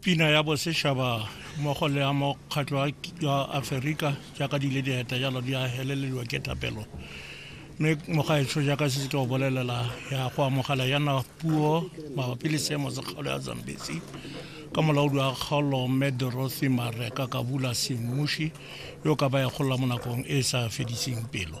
pina ya bosešaba mmogo le ya mokgatlho wa aferika jaaka di ile dieta jalo di a helelediwa ke thapelo mme mogaetsho jaaka se se tlo bolelela ya go amogela yana puo mabapi le seemo sa kgaolo ya zambesi ka molaodi wa kgaolo mme dorothy mareka ka bula semmuši yo ka ba ya gola mo nakong e e sa fediseng pelo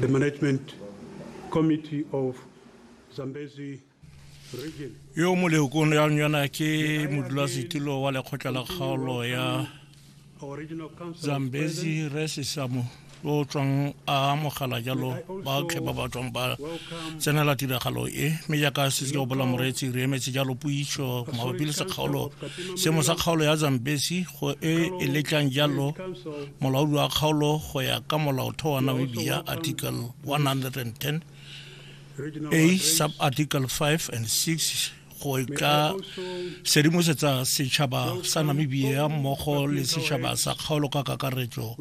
The management committee of Zambezi region. yo mo leokong ya yona ke modulasetilo wa lekgotla la kgaolo ya Our regional council. zambezi re sesamo yo o tswang a amogela jalo baotlhe ba ba tswang ba tsenela tiragalo e mme jaaka se se bola moreetsi re emetse jalo puiso mabapi le sekgaolo seemo sa kgaolo ya zambezi go e e letlang jalo Council Molaodi wa kgaolo go ya ka molaotheo wa Namibia Article 110 a sub article 5 and 6 go ka sedimosetsa setšhaba sa namibia mmogo le setšhaba sa kgaolo ka kakaretso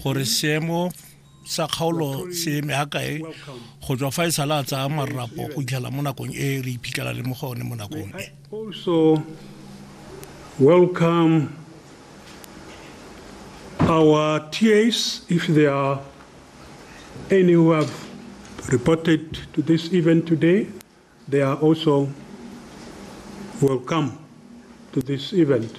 gore seemo sa kgaolo se eme ga kae go tswa fa e sala a tsaya marrapo go itlhela mo nakong e re iphitlhela le mo go one mo nakong e also welcome our TAs if there are any who have reported to this event today they are also welcome to this event